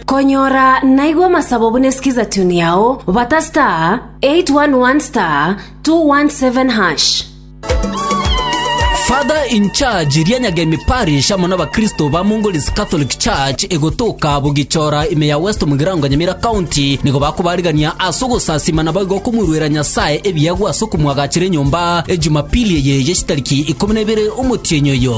Konyora naigwe amasabo buna skiza tune yao bata star 811 star 217 hash. Father in charge Rianyagemi Parish amo n'abakristo ba Mongolese Catholic Church egotoka Bogichora ime ya West Mugirango Nyamira County nigo bakobarigania ase ogosasima naboigo okomoiruera Nyasae ebiegwa ase okomwagachera enyomba Ejumapili eye ye chitariki ikomi na ibere omotienyi oyo.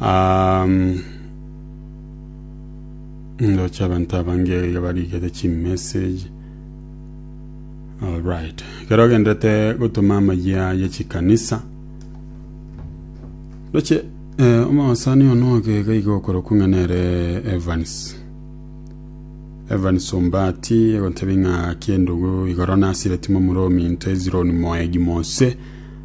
Um, ndoche abantu abange barigete chimessage alright kero ogendete gotuma amayia ye chikanisa ndoche eh, omosani ono ogega iga okorokwa ng'a nere evans evans ombati egotebi ng'a kiendugu igoro nasire timo muro ominto ezironi moegi monse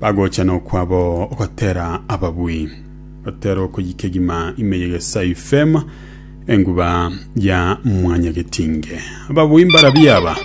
Bagochana okwabo ogotera ababui, gotera okoyika egima ime yegesa ifema enguba ya mwanyagetinge. Ababui mbarabia aba.